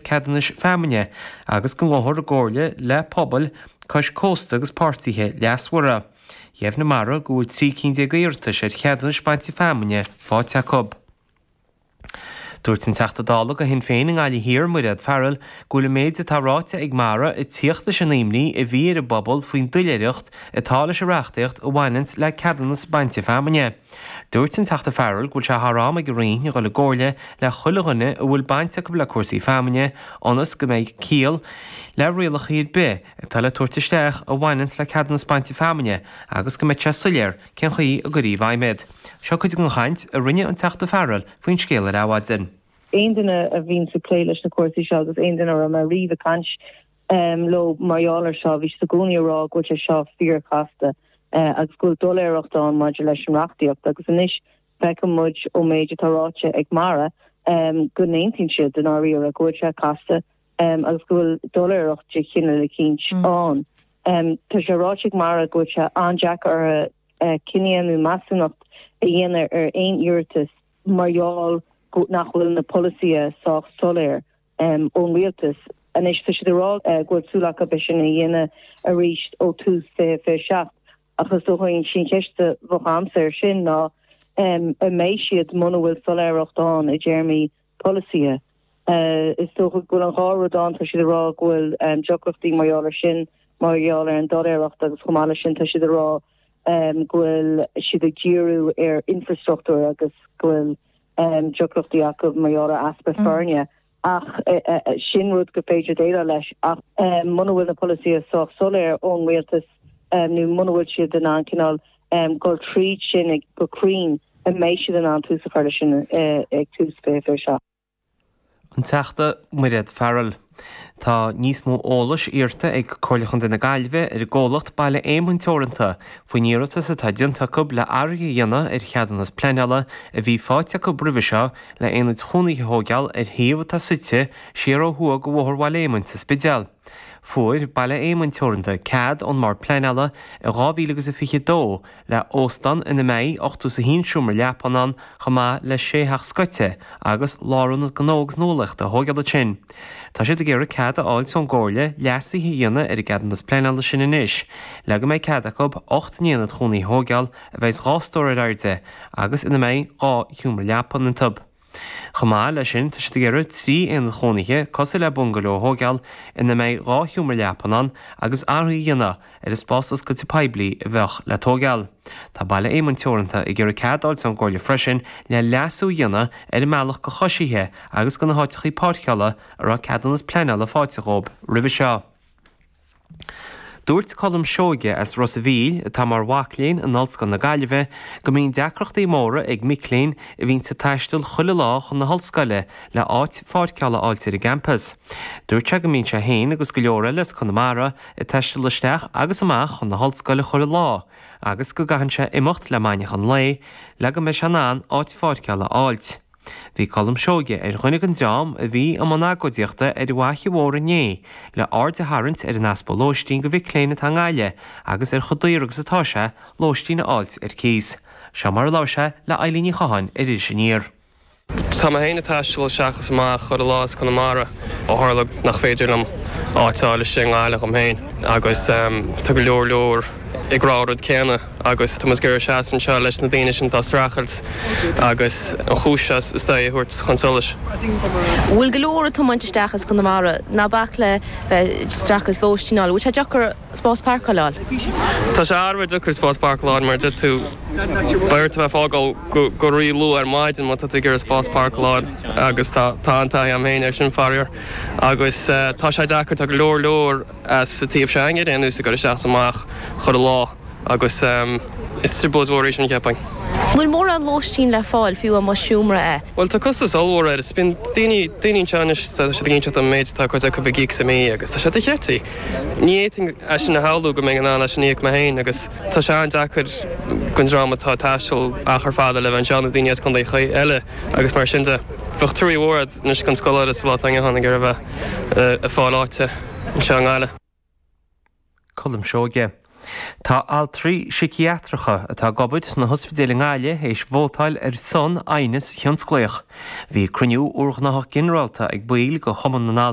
ceadúnais feamainne agus go ngabhfar i gcomhairle le pobail cois cósta agus páirtithe leasmhara. Dheimhnigh Mara go bhfuil trí cinn déag d'iarratais ar cheadúnais bainte feamainne faighte acu. Dúirt an Teachta Dála do Shinn Féin i nGaillimh Thiar, Mairéad Farrell, go bhfuil an méid atá ráite ag Mara ag tíocht leis an imní a bhí ar an bpobal faoin doiléireacht atá leis an reachtaíocht a bhaineanns le ceadúnas bainte feamainne. Dúirt an Teachta Farrell go bhfuil sé thar am ag an Roinn a dhul i gcomhairle le chuile dhuine a bhfuil baint acu le cúrsaí feamainne ionas go mbeidh ciall le rialacha ar bith atá le tabhairt isteach a bhaineanns le ceadúnas bainte feamainne agus go mbeidh sé soiléir cén chaoi a gcuirtear i bhfeidhm iad. Seo cuid den chaint a rinne an Teachta Farrell faoin scéal ar Adhmhaidin. Aon duine a bhíonns ag plé leis na cúrsaí seo agus aon duine a raibh mé riamh ag caint leo mar gheall ar seo. Bhí siad i gcónaí ag rá go bhfuil sé seo fíorchasta agus go bhfuil doiléireacht ann maidir leis an reachtaíocht agus anois feiceann muid ón méid atá ráite ag Mara go n-aontaíonn siad i ndáiríre go bhfuil sé casta agus go bhfuil doiléireacht de chineál eicínt ann. Tá sé ráite ag Mara go bhfuil sé an-deacair orthu cinneadh nó measúnacht a dhéanamh ar aon iarratas mar gheall nach bhfuil na polasaithe sách soiléir ón rialtas anois. Tá siad ag rá go bhfuil súil acu é sin a dhéanamh arís ó thús 2027, ach is dócha an cheist a bheadh agamsa air sin ná an mbeidh siad muna bhfuil soiléireacht ann i dtéarmaí polasaithe. Is dócha go bhfuil an dhá rud ann, tá siad ag rá go bhfuil deacrachtaí mar gheall air sin, mar gheall ar an doiléireacht, agus chomh maith leis sin tá siad ag rá go bhfuil siad ag díriú ar infreastruchtúr agus go bhfuil deacrachtaí acu mar gheall ar easpa foirne ach sin rud gur féidir déileáil leis ach muna bhfuil na polasaithe sách soiléir ón rialtas nó muna bhfuil siad in ann cineál dul tríd sin go cruinn an mbeidh siad in ann tús a chur leis sin ag tús 2027. An Teachta Mairéad Farrell. Tá níos mó eolais iarrta ag Comhairle Chontae na Gaillimhe ar an gcomhlacht Baile Éamoinn Teoranta faoin iarratas atá déanta acu le athrú a dhéanamh ar cheadúnas pleanála a bhí faighte acu roimhe seo le aonaid chónaithe a thóigeáil ar shuíomh atá suite siar ó thuaidh de Bhóthar Bhaile Éamoinn sa Spidéal. Fuair Baile Éamoinn Teoranta cead ón mBord Pleanála i 2022 le óstán ina mbeidh ochtó is a haon seomra leapthan ann chomh maith le sé theach scoite agus lárionad gnó agus nuálaíochta a thóigeáil ansin. Tá siad ag iarraidh cead a fháilt ón gComhairle leasuithe a dhéanamh ar an gceadúnas pleanála sin anois le go mbeidh cead acu ocht n-aonad chónaí a thóigeáil a bheidh dhá stór ar airde agus ina mbeidh dhá sheomra leapthan iontu. Chomh maith leis sin, tá siad ag iarraidh trí aonad chónaithe cosúil le bungaló a thóigeáil ina mbeidh dhá sheomra leapan ann agus athrú a dhéanamh ar an spás oscailte poiblí a bheadh le tóigeáil. Tá Baile Éamoinn Teoranta ag iarraidh cead a fháilt ón gComhairle freisin le leasú a dhéanamh ar an mbealach do choisithe agus go na háiteachaí páirceála a raibh ceadúnas pleanála fáighte dhóib roimhe seo. Dúirt Colm Seoige as Ros a Mhíl, atá mar mhac léinn in Ollscoil na Gaillimhe, go mbíonn deacrachtaí móra ag mic léinn a bhíonn ag taisteal chuile lá chun na hollscoile le áit pháirceála a fháilt ar an gcampas. Dúirt sé go mbíonn sé féin agus go leor eile as Conamara ag taisteal isteach agus amach chun na hollscoile chuile lá agus go gcaitheann sé imeacht le maidneachan lae le go mbeidh sé in ann áit pháirceála a fháilt. Bhí Colm Seoige ar dhuine den dream a bhí i mbun agóidíochta ar an bhFaiche Mhór inné le aird a tharraingt ar an easpa lóistín do mhic léinn atá i nGaillimh agus ar chomh daor agus atá sé lóistín a fháilt ar cíos. Seo mar a labhair sé le Eileen Ní Chatháin ar Iris Aniar. Tá mé féin ag taisteal isteach is amach chuile lá as Conamara ó tharla nach féidir liom áit a fháilt i nGaillimh dom féin agus tá go leor leor ag rá an rud céanna. Agus tá muid ag iarraidh seasamh anseo leis na daoine sin atá ag streachailt agus an chúis seo is dóigh a thabhairt chun solais. Bhfuil go leor atá ag tomáint isteach as Conamara, ná bac le bheith ag streachailt lóistín a fháil, bhfuil sé deacair spás páirceála a fháil? Tá sé uafar deacair spás páirceála a fháil mar a dúirt tú, beidh ort a bheith ag fágáil go ríluath ar maidin má tá tú ag iarraidh spás páirceála a fháil agus tá an taithí agam féin ar sin faraor. Agus tá sé deacair, tá go leor leor. as an taobh s'againne ar aon nós, ag goil isteach is amach chuile lá, agus is trioblóid mhór í sin, cheapfainn. Níl mórán lóistín le fáil, fiú amuigh i seomra a. Bhuel, tá costas ollmhór air, is bíonn daoine, daoine anseo anois, tá siad ag inseacht dom an méid atá cuid acu ag íoc sa mí, agus tá sé de cheití. Ní fhéadfainn é sin a shamhlú, go mbeinn in ann é sin a íoc mé féin, agus tá sé an-deacair don dream atá ag taisteal achar fada le bheith anseo, nó daoine as contaetha eile, agus mar sin de. Bheadh truaí mhór a'd anois don scoláire sa lá atá inniu ann, ag iarraidh a bheith. ag fáil áite anseo i nGaillimh. Colm Seoige. Tá altraí siciatracha atá ag obair sna hospidéil i nGaillimh éis vótáil ar son aighneas thionsclaíoch. Bhí cruinniú urghnách ginearálta ag baill de Chumann na.